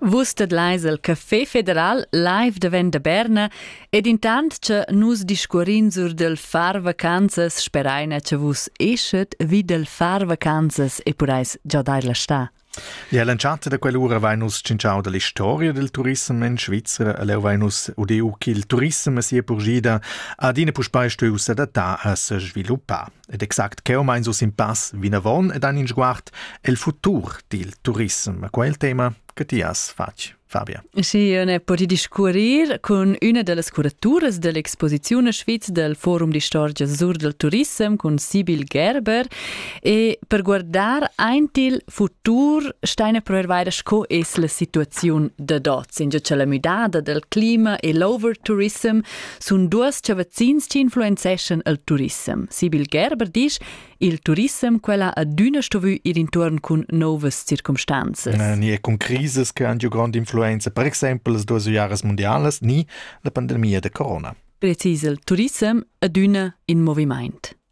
Vus tedlais el Café Federal live da Venda Berna ed intant che nus discurrin sur del far vacanzas speraina che vus eschet vi del far vacanzas e purais già dar la sta. Ja, l'entschatta da quell'ura vain nus cinciau dalla storia del turism in Svizzera, allora vain nus udeu ch'il turism sia purgida ad ina puspei steu s'adattà a se sviluppar. Ed exact cheu mein su sin pass vinavon ed han in sguard el futur dil turism. Quei è il tema che ti has fatg, Fabia. Sì, ne poti discuorir cun üna dellas curaturas dell'exposizione Schweiz del Forum di Storia sur del Turism cun Sibyl Gerber e per guardar aint il futur steine per weiter sco es la situaziun da dots, in già la müdada del clima e l'over tourism sun duos chavazzins chi influenzeschan il turissem. Sibyl Gerber disch, il turissem quella adüna stuvü ir intuorn cun novas circumstanzas. Eh, ni è con crisis che han giù grande influenza, per esempio las duas iaras mondialas, ni la pandemia da corona. Precis il turissem adüna in movimaint.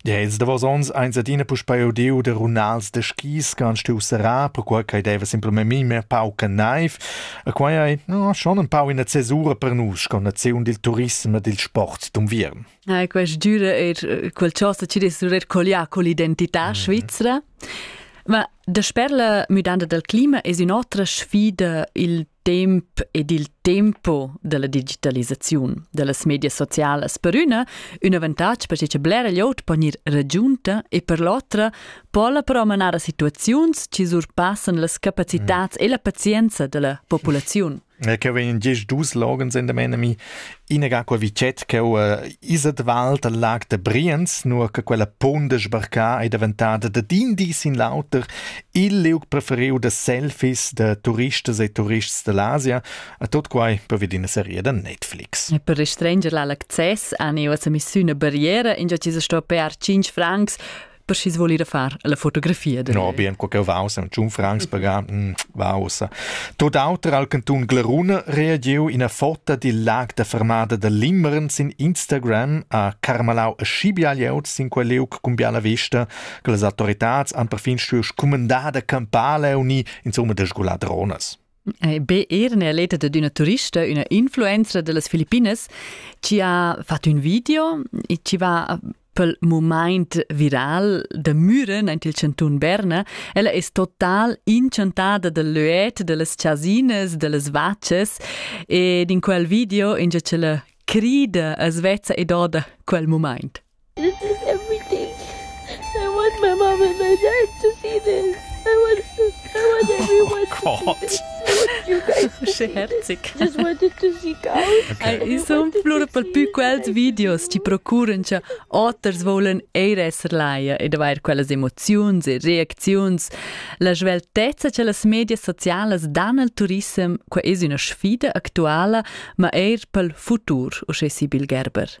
Dels davos ons eins adina puspei udiu da runals da skis che han stuiu serrar perquei ch'ei deva simplamain memia pauca neiv. E quei ei no, schon empau ina cesura per nus sco naziun dil turism e dil sport d'unviern. Ah, quest düra er eh, quel chosa ci dess rir collià con l'identità svizra. Ma da sper la müdanda dal clima es ün'otra sfida il temp ed il tempo della digitalisaziun dellas medias socialas per üna ün avantatg perche cha blera glieud po gnir ragiunta e per l'otra po ella però manar a situaziuns chi surpassan las capacitats e la pazienza della populaziun. Che vegn diesch dus Slogans in der meine mi Inaga quei vitget cheu eh, isa de Wald al lag da Briens, nua che quella ponda sbarca ei daventada dad in di sin l'auter il liug preferiu da selfies da turistas e turists dall'Asia, a tot quai per vid ina serie da Netflix. E per restringere l'access an eo a emissione barriera, in già ci sta per 5 francs per schi's voul ir a far la fotografia. De no, bien, co che vaus, un tschun francs pagar, mm, vausa. Tot auter al cantun Glaruna reagiu ina foto dil lag da fermada da Limmern sin Instagram a Carmalau e Schibialiaut sin quel leuc cumbiala vesta, che las autoritats han perfin stuiu scumandar da campar leuni, insomma, de sgular dronas. Be er ne aleta dad üna turista, üna influenza dellas Filippinas, chi ha fat ün video e chi va pel mumaint viral da Müren aint il chantun Berna. Ella es total inchantada dal löet, dellas chasinas, dellas vachas ed in quel video ingia ch'ella crida as vezza e doda quel mumaint. everything I want my mum and my dad to see this I want I want everyone to see this I want you guys to see this Just wanted to see cows okay. I sun plura per più quels videos ti procuran cha oters volan eir esser laia ed avair quellas emoziuns e reacziuns la sveltezza cha las medias socialas dan al turissem qua es üna sfida actuala ma eir pel futur uschè Sibyl Gerber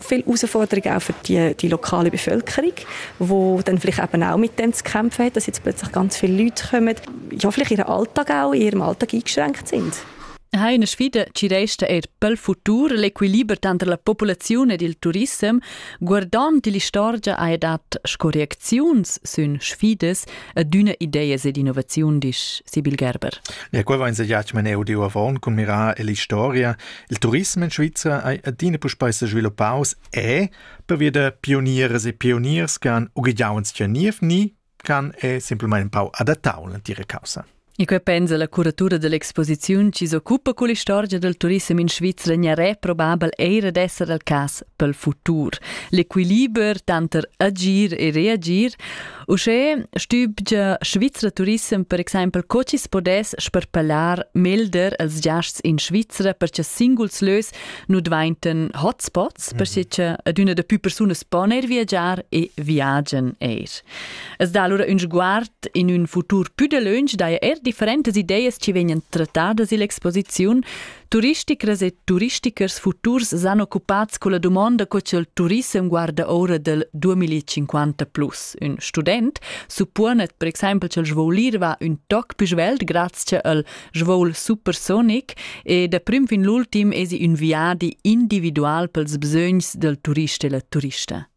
viele Herausforderungen auch für die, die lokale Bevölkerung, die dann vielleicht eben auch mit denen zu kämpfen hat, dass jetzt plötzlich ganz viele Leute kommen, ja, vielleicht ihren Alltag auch in ihrem Alltag eingeschränkt sind. Ha in sfida ci resta er pel futur l'equiliber tanter la populaziun ed il turissem, guardand l'istorgia ha dat scorreziuns sün sfidas ad üna ideas ed innovaziun, disch Sibyl Gerber. Ja, gut, wenn Sie jetzt mein Audio avon, kun mirar l'historia, Il turism in Svizra ei adina puspei sesviluppaus e, pervia da pionieras e pioniers che han ughegiau sia niev ni, can è semplicemente un po' adattau alla tira causa. E quei pensa la curatura dell'exposiziun chi s'occupa con l'istorgia del turismo in Svizzera gnaré probabel eira d'esser al cas pel futur. L'equiliber tanter agir e reagir Uschè stübgia Svizra Turissem per exaimpel co chi's podess sperpellar melder els giasts in Svizra per cha singuls lös nu dvaintan hotspots, mhm. perche cha adüna da pü persunas pon eir viagiar e viagian eir. Es dà allura ün sguard in ün futur pü dalöntsch daja eir differentas ideas chi vegnan trattadas illa exposiziun, Turisticras e turistichers futurs san occupats culla dumonda co ch'el turissem guarda ora del 2050 plus. Ün student supponet per exempel ch'el svol ir va ün toc più svelt graz che el svol supersonic e da prim fin l'ultim esi ün viadi individual pels bsögns del turist e la turista.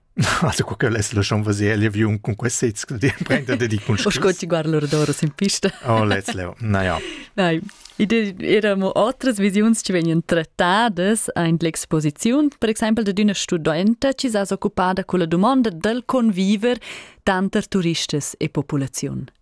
Also co ch'el es laschon vaser l'aviun cun quest sez che di prenda dedi cun sco ti guard l'ordora sin pista. Oh let's leo. Na ja. Nein. Id eramo otras visiuns che vegnan trattadas in l'exposiziun, per exempel de d'una studenta ci sa occupada con la domanda del conviver tanter turistas e popolaziun.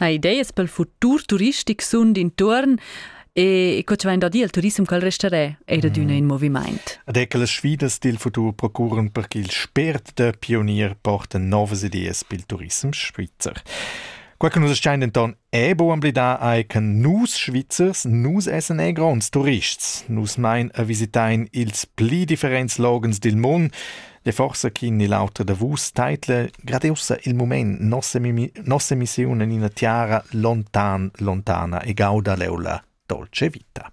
ha ideas pel futur turistic sun d'intuorn e co ci vain da dir il turism col restarè eir adüna mm. in movimaint. Ed è che las sfidas dil futur procuran per che il spert da pionier porten novas ideas pel turism svizzer. Qua che nus schain denton è bo amblidar ai che nus Svizzers nus essen ei gronds turists. Nus mein a visitain ils pli differents logens dil mund e forsa chi ni l'auter da vus teitla gradiusa il mument nossa, mimi- nossa emissiun in ina tiara lontan, lontana e gauda leula dolce vita.